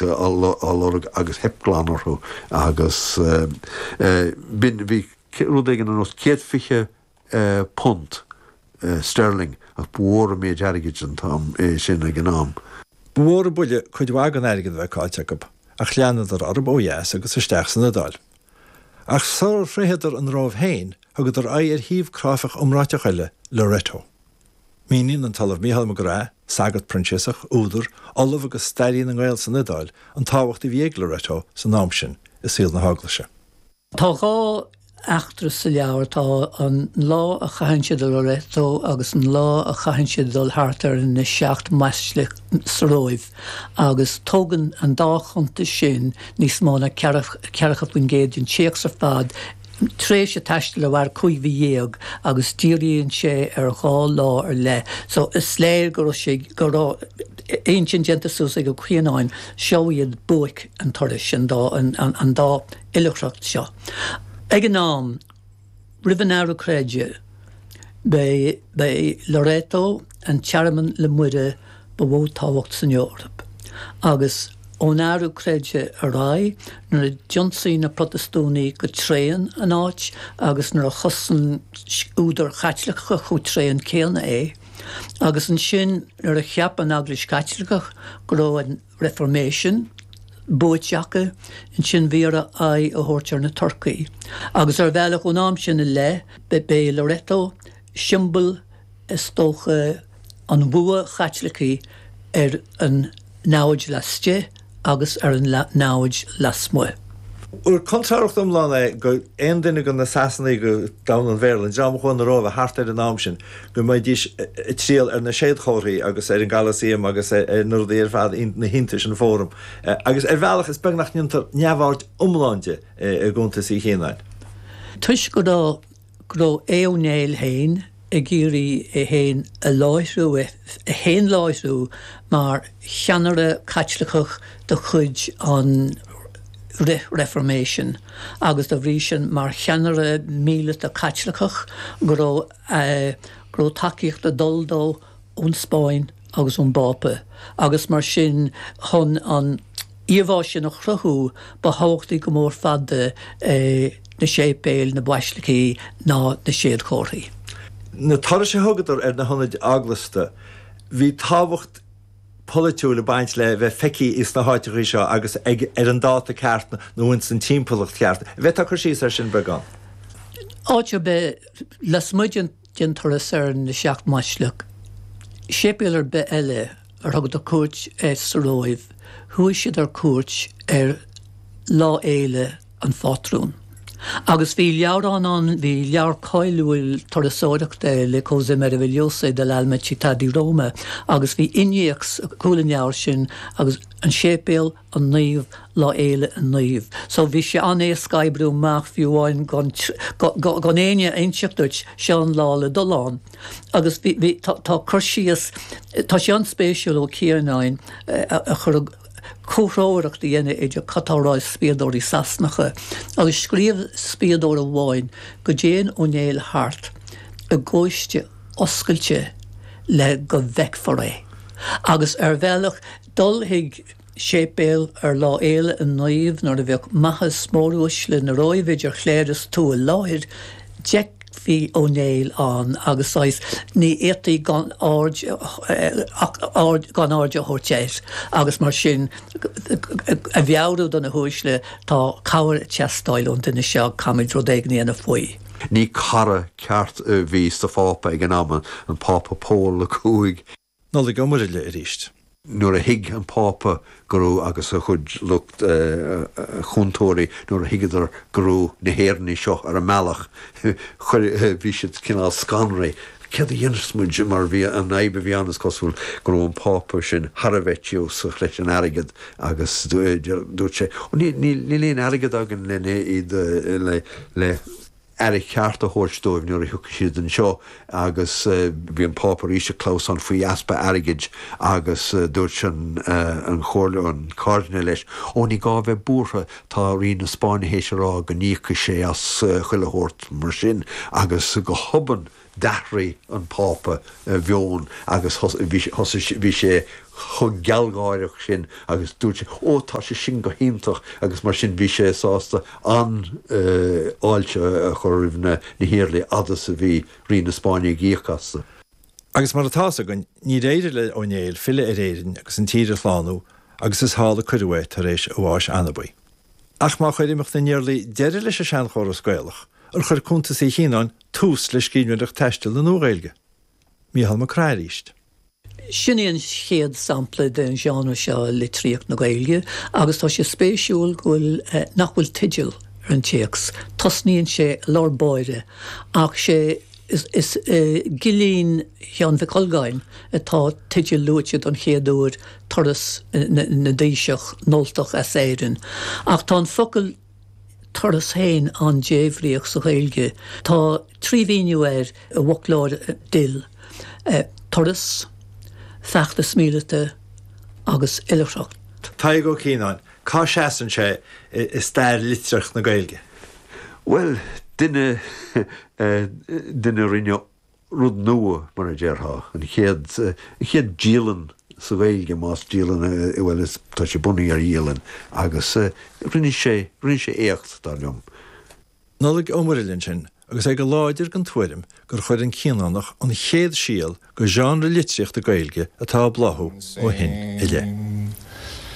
á lorg agus theip glan orthu agus b'in, bhí rud éigin ar nós céad fiche punt sterling ach ba mhór an méid airgid an t-am é sin ag an am. Ba mhór an buille cuid mhaith den airgead a bheith cáillte acu ach leanadar orthu ó dheas agus isteach san Iodáil. Ach sara shroicheadar an Róimh féin thugadar aghaidh ar shuíomh cráifeach iomráiteach eile, Loreto. Míníonn an tOllamh Mícheál Mac Graith, sagart Proinsiasach, údar, ollamh agus stairí na nGael san Iodáil, an tábhacht a bhí ag Loreto san am sin i saol na hEaglaise. Tá dhá eachtra sa leabhar, tá an lá a chaitheann siad i Loreto agus an lá a chaitheann siad ag dul thart ar na seacht mbaisleac sa Róimh, agus tógann an dá chuntas sin níos mó ná ceathracha faoin gcéad den téacs ar fad. tréimhse taistil a mhair cúig mhí dhéag agus díríonn sé ar dhá lá ar leith so is léir go raibh sé, go raibh intinn déanta suas ag Ó Cianáin, seo iad buaic an turais, an dá, an dá oilithreacht seo. Ag an am, roimh an athrú creidimh, ba é, ba é Loreto an tearmann le Muire, ba mhó tábhacht san Eoraip, agus ón athrú creidimh ar aghaidh, nuair a d'ionsaigh na Protastúnaigh go tréan an áit agus nuair a chosain údair Chaitliceacha chomh tréan céanna é, agus ansin nuair a cheap an Eaglais Chaitliceach go raibh an Reifirméisean buaite acu, ansin bhí orthu aghaidh a thabhairt ar na Turcaigh. Agus ar bhealach ón am sin i leith, ba é Loreto siombail is dócha, an bhua Chaitlicí ar an namhaid laistigh agus ar an namhaid lasmuigh. gur contrárthacht iomlán é go haon duine de na Sasanaigh, de dhomhan an Bhéarla, an dream a chuaigh chun na Róimhe thart ar an am sin, go mbeidís ag triall ar na séadchomharthaí agus ar an gColasaem agus ar na rudaí ar fad, na hiontais, an Fóram. Agus ar bhealach, is beag nach ndéantar neamhaird iomlán de i gcuntas Uí Chianáin. Toisc go raibh go raibh Aodh Ó Néill féin ag iarraidh é féin a láithriú, é féin láithriú mar cheannaire Caitliceach de chuid an Fhrith-Reifirméisin agus dá bhrí sin mar cheannaire míleata Caitliceach go raibh, go raibh tacaíocht ag dul dó. ón Spáinn agus ón bPápa agus mar sin chun an íomhá sin a chruthú ba thábhachtaí go mór fada na séipéil, na baislicí ná na séadchomharthaí. Na turais a thugadar ar na hionaid eaglasta, bhí tábhacht pholaitiúil ag baint le bheith feicthe sna háiteachaí seo agus ag, ar an dáta ceart nó ins an timpeallacht cheart. An bhféadfá cur síos air sin beagán. Áit ar bith lasmuigh den. den turas ar na Seacht mBaisleac. Séipéal ar bith eile ar thugadar cuairt air sa Róimh, chuaigh siad ar cuairt air lá fhéile an phátrúin. Agus bhí leabhrán ann, bhí leabhar cáiliúil turasóireachta air, Le cose meravigliose dell'alma città di Roma, agus bhí innéacs i gcúl an leabhair sin agus an séipéal, an naomh, Lá Fhéile an Naoimh. So bhí sé an-éasca oibriú amach fiú amháin gan éinne a inseacht duit, seo an lá le dul ann. Agus bhí, bhí, tá, tá cur síos, tá sé an-spéisiúil Ó Cianáin a chur, comhthreomhaireacht a dhéanamh idir cad tá á rá ag spiadóirí Sasanacha. Agus scríobh spiadóir amháin go dtéann Ó Néill thart i gcóiste oscailte le go bhfeicfear é. Agus ar bhealach. dul chuig séipéal ar Lá Fhéile an Naoimh nuair a bheadh maithe is móruaisle na Róimhe idir chléir is tuath i láthair, d'fheicfí Ó Néill ann agus, saghas, ní fhéadfaí gan aird gan aird a thabhairt air agus mar sin a mheabhrú do na huaisle tá cabhair ag teastáil ón duine seo, caithfimid rud éigin a dhéanamh faoi. Ní cara ceart a bhí sa Phápa ag an am, an Pápa Pól a Cúig, Nollaig Ó Muraíle arís. nuair a thuig an Pápa go raibh agus a chuid lucht cúntóirí, nuair a thuigeadar go raibh na hÉireannaigh seo ar a mbealach, chuir, bhí siad cineál scanraithe, céard a dhéanfas muid, mar bhí an fhadhb a bhí ann is cosúil go raibh an Pápa sin thar a bheith tíosach leis an airgead agus dúirt sé, ó níl aon airgead againn le aire cheart a thabhairt dóibh nuair a thiocfaidh siad anseo agus bhí an Pápa arís ag clamhsán faoi easpa airgid agus dúirt an, a chomhairleoir, Cairdinéal leis, Ó, ní gá a bheith buartha, tá Rí na Spáinne théis a rá go n-íocfaidh sé as chuile shórt mar sin agus go hobann, d'athraigh an Pápa a mheon agus thosaigh, bhí sé chomh gealgháireach sin agus dúirt sé, ó, tá sé sin go hiontach agus mar sin bhí sé sásta an-fháilte a chur roimh na hIarlaí, a fhad is a bhí Rí na Spáinne ag íoc astu. Agus mar atá a fhios againn, níor éirigh le Ó Néill filleadh ar Éirinn agus an tír a shlánú agus is thall a cuireadh é tar éis a bháis anabaí. Ach má chuir Imeacht na nIarlaí deireadh leis an seanchóras Gaelach, ar chuir cuntas Uí Chianáin tús le scríbhneoireacht taistil na Nua-Ghaeilge? Mícheál Mac Craith arís. Sin é an chéad sampla den genre seo i litríocht na Gaeilge agus tá sé spéisiúil go bhfuil nach bhfuil teideal ar an téacs. Tosnaíonn sé i lár báire ach sé. Is i gcinnlínte Mhic Colgáin atá teideal luaite don chéad uair, 'Turas na dtaoiseach nUltach as Éirinn', ach tá an focal 'turas' féin an-débhríoch sa Ghaeilge. Tá trí mhíniú air i bhfoclóir DIL, 'turas', 'feachtas míleata' agus 'oilithreacht'. Tadhg Ó Cianáin, Cá seasann sé i stair litríocht na Gaeilge? Bhuel, duine, duine a rinne rud nua, mar a déarfá, an chéad, an chéad dialann sa Ghaeilge, más dialann é, bhuel is, tá sé bunaithe ar dhialann agus rinne sé, rinne sé éacht, dar liom. Nollaig Ó Muraíle ansin agus é go láidir den tuairim gur chuir an Cianánach an chéad síol de sheánra litríochta Gaeilge atá ag bláthú ó shin i leith.